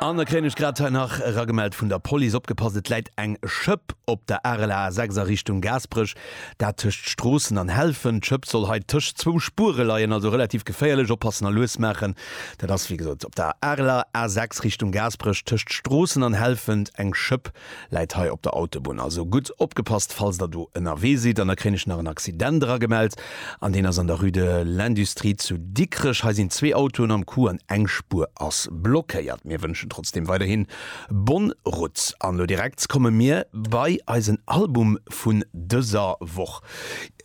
An da kréien ech grad hei nach eragemellt vun der Police, Opgepasst, et läit eng Schëpp op der Arel A 6 a Richtung Gaasperech, dat tëscht Stroossen an Helfen. D'Schëpp soll hei tëscht zwou Spuere leien, also relativ geféierlech. Oppassen a lues maachen. Dat ass wéi gesot op der Arel A 6 Richtung Gaasperech tëscht Stroossen an Helfent eng Schëpp. Läit hei op der Autobunn, also gutt opgepasst falls der do ënnerwee sidd. An da kréien ech nach en Accident eragemellt, an deen ass an der Rue de l'Industrie zu Dikrech. Hei sinn zwee Autoen am Coup an eng Spuer ass blockéiert. Mir wënschen trotzdem weiderhin bonne route. An elo direkt komme mir bei eisen Album vun dëser Woch.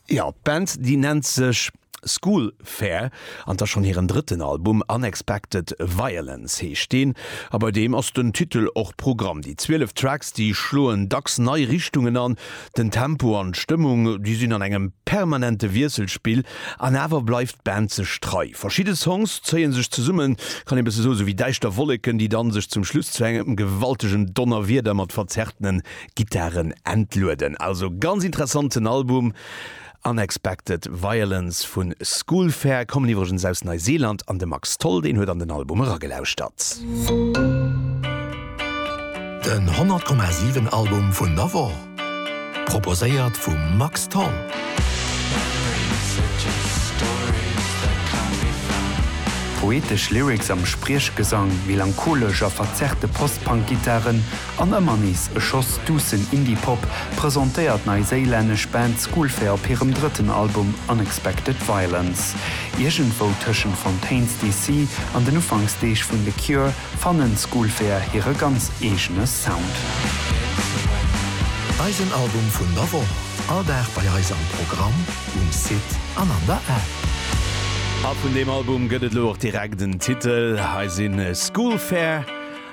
Jo, d'Band déi nennt sech. School Fair an t'ass schonn hiren drëtten Album, Unexpected Violence heescht deen a bei deem ass den Titel och Programm. Déi 12 Tracks, déi schloen dacks nei Richtungen an, den Tempo an d'Stëmmung, déi sinn an engem permanente Wiesselspill an awer bleift d'Band sech trei. Verschidde Songs zéie sech zesummen, kann ee bësse soen, esou wéi däischter Wolleken, déi dann sech zum Schluss zu engem gewaltegen Donnerwieder mat verzerrtene Gittaren entlueden. Also ganz interessanten Album Unexpected Violence vu School Fair kommen iwwregens aus Neiseeland an de Max Tholl deen huet an den Album eragelauschtert. Den 100 Komma 7 Album vun der Woch proposéiert vum Max Tholl. Poetesch Lyrics am Spriechgesang, melancholesch a verzerrte Post-Punk-Gittaren An ëmmer nees e Schoss duussen Indie-Pop presentéiert d'neiséilännesch Band Schoolfair op hirem drëtten Album Unexpected Violence. Iergendwou tëschent Fontaines DC. an den Ufanksdeeg vun The Cure fannen Schoolfair hire ganz eegene Sound. Eisen Album vun der Woch, all Dag bei eis am Programm, um Site an an der App. A vun deem Album gëtt et lo och direkt en Titel. Hei sinn Schoolfair.